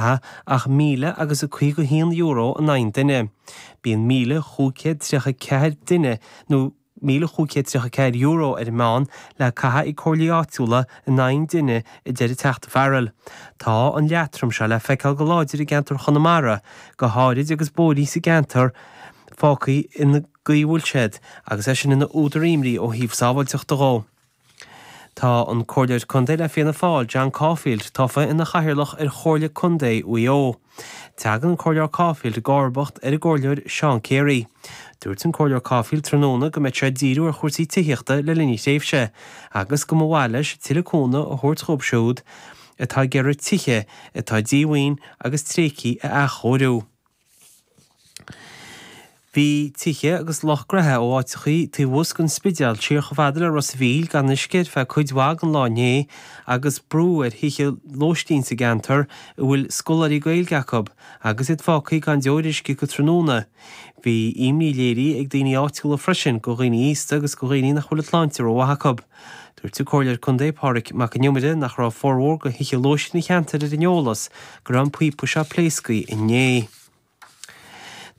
ach míle agus a caoga haon euro in aghaidh an duine. Bíonn míle chúig céad tríocha ceathair duine nó míle chúig céad tríocha ceathair euro ar an meán le caitheamh ag comhairlí áitiúla in aghaidh an duine, a deir an Teachta Farrell. Tá an leatrom seo le feiceáil go láidir i gceantar Chonamara go háirid agus bóithrí sa gceantar fágtha sa gcaoi a bhfuil siad agus é sin ina údar imní ó thaobh sábháilteachta dhó. Tá an Comhairleoir Contae le Fianna Fáil, John Caulfield, tofa ina chathaoirleach ar Chomhairle Contae Mhaigh Eo. Tagann an Comhairleoir Caulfield i gcomharbacht ar an gComhairleoir Seán Carey. Dúirt an Comhairleoir Caulfield tráthnóna go mbeadh sé ag díriú ar chúrsaí tithíochta le linn a thréimhse agus go mba mhaith leis tuilleadh cúnamh a thabhairt dhóibh siúd atá ag iarraidh tithe atá díomhaoin agus tréigthe a athchóiriú. Bhí tithe agus lucht gnótha ó áiteachaí taobh thuas den Spidéal siar chomh fada le Ros a' Mhíl gan uisce ar feadh cuid mhaith den lá inné agus brú ar thithe lóistín sa gceantar a bhfuil scoláirí Gaeilge acu agus iad fágthaí gan deoir uisce go tráthnóna. Bhí imní léirithe ag daoine áitiúla freisin go dhaoine aosta agus go dhaoine nach bhfuil an tsláinte rómhaith acu. Dúirt an Comhairleoir Contae Pádraig Mac an Iomaire nach raibh formhór de thithe lóistín an cheantair ar an eolas go raibh an píopa seo pléasctha inné.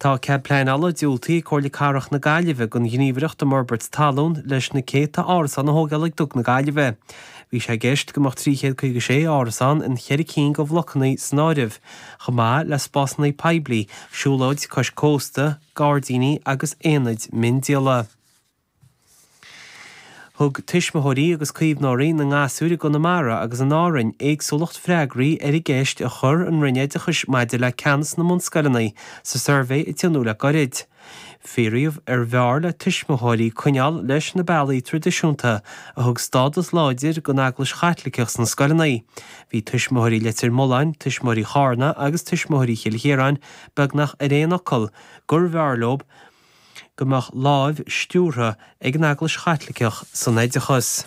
Tá cead pleanála diúltaithe ag Comhairle Cathrach na Gaillimhe don ghníomhaireacht um fhorbairt talún leis na céadta árasán a thógáil ag Dug na Gaillimhe. Bhí sé i gceist go mbeadh 356 árasán i gceithre cinn de bhlocanna san áireamh, chomh maith le spásanna poiblí, siúlóid cois cósta, gairdíní agus aonaid miondíola. Thug Tuismitheoirí agus Caomhnóirí na nGasúr i gConamara agus in Árainn éagsúlacht freagraí ar an gceist a chuir an Roinn Oideachais maidir le ceannas na mbunscoileanna sa suirbhé a tionóladh le gairid. Fiafraíodh arbh fhearr le tuismitheoirí coinneáil leis na bealaí traidisiúnta a thug stádas láidir don Eaglais Chaitliceach sna scoileanna. Bhí Tuismitheoirí Leitir Mealláin, Tuismitheoirí Charna agus Tuismitheoirí Chill Chiaráin beagnach ar aon fhocal gurbh fhearr leo go mbeadh láimh stiúrtha ag an Eaglais Chaitliceach san oideachas.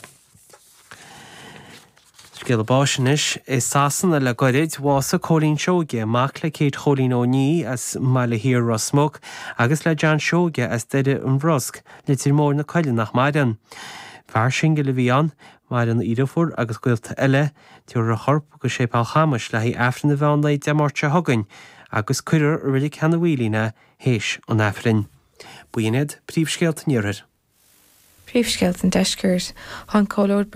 Scéala báis anois i Sasana le gairid, bhásaigh Cóilín Seoige, mac le Céit Chóilín Ó Niaidh as an mBaile Thiar, Ros Muc, agus le John Seoige as Doire an Bhrosc, Leitir Móir na Coille nach maireann. Fear singil a bhí ann. Maireann a dheirfiúr agus gaolta eile. Tabharfar a chorp go Séipéal Chamais le haghaidh Aifreann a bheidh ann Dé Máirt seo chugainn agus cuirfear i Reilig Sheanadh Mhaoilín é. théis an Aifrinn. B'in iad príomhscéalta an Iarthair. Príomhscéalta an Deiscirt. Tá an Comhairleoir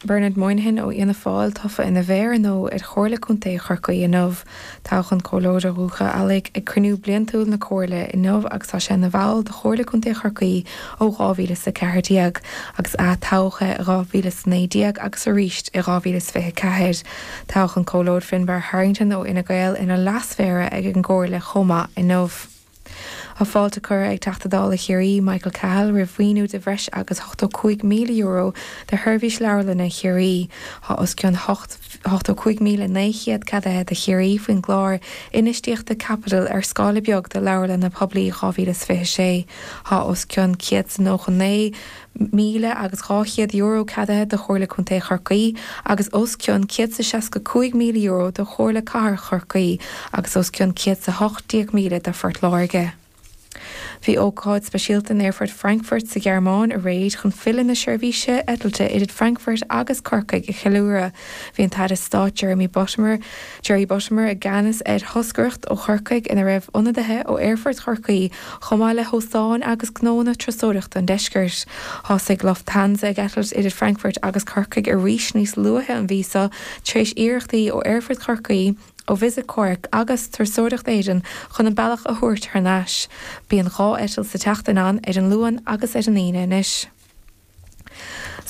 Bernard Moynihan ó Fhianna Fáil tofa ina mhéara nua ar Chomhairle Contae Chorcaí inniu. Toghadh an Comhairleoir ó Dhúiche Ealla ag cruinniú bliantúil na Comhairle inniu agus tá sé ina bhall de Chomhairle Contae Chorcaí ó 2014 agus ath-toghadh é i 2019 agus arís i 2024. Toghadh an Comhairleoir Finbarr Harrington ó Fhine Gael ina Leas-Mhéara ag an gComhairle chomh maith inniu. Tá fáilte curtha ag Teachta Dála Chiarraí, Michael Cahill roimh mhaoiniú de bhreis agus €85,000 do Sheirbhís Leabharlainne Chiarraí. Tá os cionn €85,900 ceadaithe do Chiarraí faoin gClár Infheistíochta Caipitil ar Scála Beag do Leabharlanna Poiblí 2026. Tá os cionn €199. míle agus dhá chéad euro ceadaithe do Chomhairle Contae Chorcaí agus os cionn céad is a seasca cúig míle euro do Chomhairle Cathrach Chorcaí agus os cionn céad is a hocht déag míle do Phort Láirge. Bhí ócáid speisialta in Aerfort Frankfurt sa Ghearmáin aréir chun filleadh na seirbhíse eitilte idir Frankfurt agus Corcaigh a cheiliúradh. Bhí an tAire Stáit Jeremy Buttimer, Jerry Buttimer i gceannas ar thoscaireacht ó Chorcaigh ina raibh ionadaithe ó Aerfort Chorcaí chomh maith le hóstáin agus gnóanna turasóireachta an deiscirt. Thosaigh Lufthansa ag eitilt idir Frankfurt agus Corcaigh arís níos luaithe an mhí seo tar éis iarrachtaí ó Aerfort Chorcaí, ó Visit Cork agus Turasóireacht Éireann chun an bealach a thabhairt thar n-ais. Bíonn dhá eitilt sa tseachtain ann, ar an Luan agus ar an Aoine anois.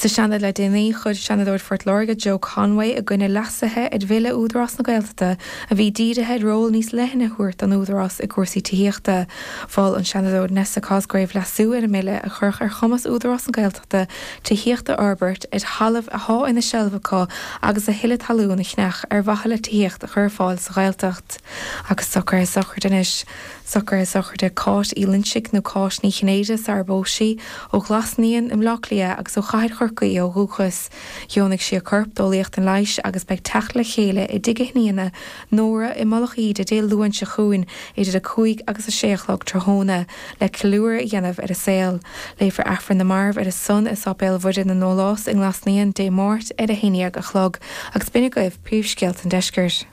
Sa Seanad le déanaí, chuir Seanadóir Phort Láirge Joe Conway i gcoinne leasuithe ar Bhille Údarás na Gaeltachta a bhí dírithe ar ról níos leithne a thabhairt don Údarás i gcúrsaí tithíochta. Mhol an Seanadóir Nessa Cosgrove leasú ar an mbille a chuirfeadh ar chumas Údarás na Gaeltachta tithíocht a fhorbairt ar thalamh atá ina seilbh acu agus a thuilleadh talún a cheannach ar mhaithe le tithíocht a chur ar fáil sa Ghaeltacht. Agus socruithe sochraide anois. Socruithe sochraide Cáit Uí Loinsigh nó Cáit Ní Chinnéide sarar phós sí, ó Ghlas Naíon i mBleá Cliath agus ó Chathair Chorcaí ó dhúchas. Dheonaigh sí a corp d'Eolaíocht an Leighis agus beidh teacht le chéile i dtigh a hiníne, Nóra, i Mullach Íde Dé Luain seo chugainn idir 5 agus 6 a chlog tráthnóna le ceiliúradh a dhéanamh ar a saol. Léifear Aifreann na Marbh ar a son i Sáipéal Mhuire na nDólás i nGlas Naíon Dé Máirt ar 11 a chlog agus b'in agaibh príomhscéalta an deiscirt.